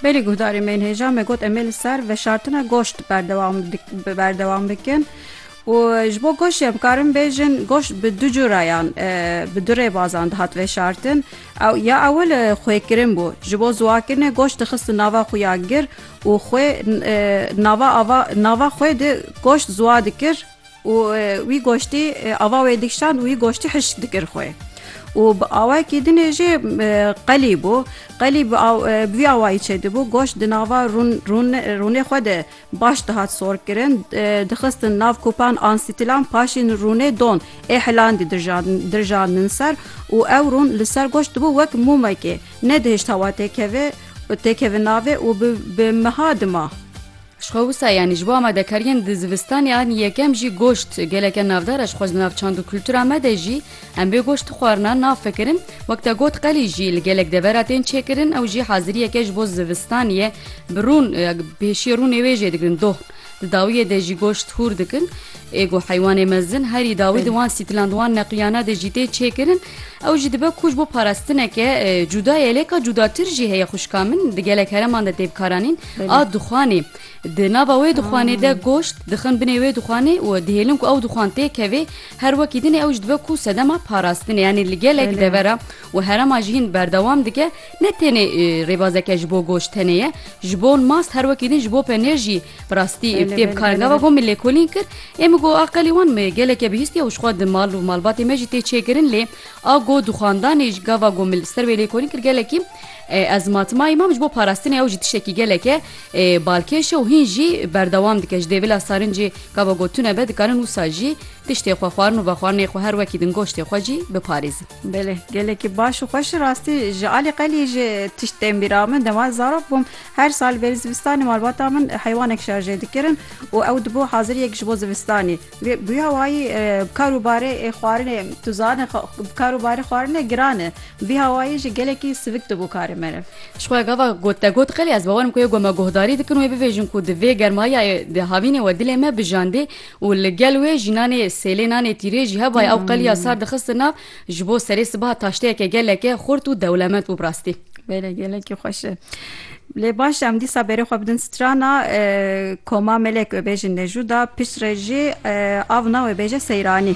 Belê guhdarê me yên hêja me got em ê li ser veşartina goşt berdewam bikin û ji bo goşt jî em karin bêjin goşt bi du curayan bi du rêbazan dihat veşartin ew ya ew li xwêkirin bû ji bo ziwakirinê goşt dixistin nava xwe ya gir û xwê nava nava xwê di goşt ziwa dikir û wî goştî ava wê dikişand û wî goştî hişk dikir xwe. û bi awayekî dinê jê qelî bû. Qelî bi vî awayî çêdibû, goşt di nava rûnê xwe de baş dihat sorkirin, dixistin nav kupan an stîlan paşîn rûnê don ê hilandî dirjandin ser û ew rûn li ser goşt dibû wek mûmekê, nedihişt hewa têkeve navê û bi meha dima. Ji xwe wisa yanî ji bo amadekariyên di zivistanê an yekem jî goşt geleke navdar e ji xwe ji nav çand û kultura me de jî em bê goşt dixwarina nafikirin wek te got qelî jî li gelek devera tên çêkirin ew jî haziriyeke ji bo zivistaniye bi rûn pêşiyê rûnê wê jê digirin doh di dawiyê de jî goşt hûr dikin ê got heywanê mezin herî dawî di wan sîtilan di wan neqiyana de jî tê çêkirin Ew jî dibe ku ji bo parastineke cuda ye lê ka cudatir jî heye xwişka min di gelek hereman de tê bikaranîn a dixwanê. Di nava wê dixwanê de goşt dixin binê wê dixwanê û dihêlin ku ew dixwan tê kevê her wekî dinê ew jî dibe ku sedema parastinê yanî li gelek devera û herema jî hîn berdewam dike ne tenê rêbazeke ji bo goşt tenê ye ji bo mast her wekî din ji bo penêr jî Bi rastî ev tê bi kar gava got min lêkolîn kir. Ê min got a qelê wan me geleke bihîstiye û jixwe di mal û malbatê me jî tê çêkirin lê a got di xwandanê ji gava got min li ser wê lêkolîn kir gelekî ez matmayî mam ji bo parastinê ew jî tiştekî geleke balkêş e û hîn jî berdewam dike ji dê vila sarincê gava got tune be dikarin wisa jî tiştê xwe xwarin û vexwarinê xwe her wekî din goştê xwe jî biparêzin. Belê, gelekî baş û xweş rastî ji alî qelî ji tişt tên bîra min. Dema zarok bûm her sal berî zivistanê malbata min heywanek şarjê dikirin û ew dibû haziriyek ji bo zivistanê. Wê bûya wayî bi kar û barê xwarinê tu zane bi kar û barê xwarinê giran e. Bûya wayî jî gelekî sivik dibû karê meriv. Ji xwe gava got te got qelê ez bawer im ku yê ku me guhdarî dikin wê bibêjin ku di vê germayayê di havînê we dilê me bijandê û li gel wê jînanê sêlê nanê tîrê jî hevayê ew qeliya sar dixistin nav ji bo serê sibaha taşteyeke geleke xurt û dewlemend bû bi rastî. Bêle gelekî xweş e. Lê baş e em dîsa berê xwe bidin strana Koma Melek wê bêjin Nejuda, piştre jî av na wê bêje Seyranî.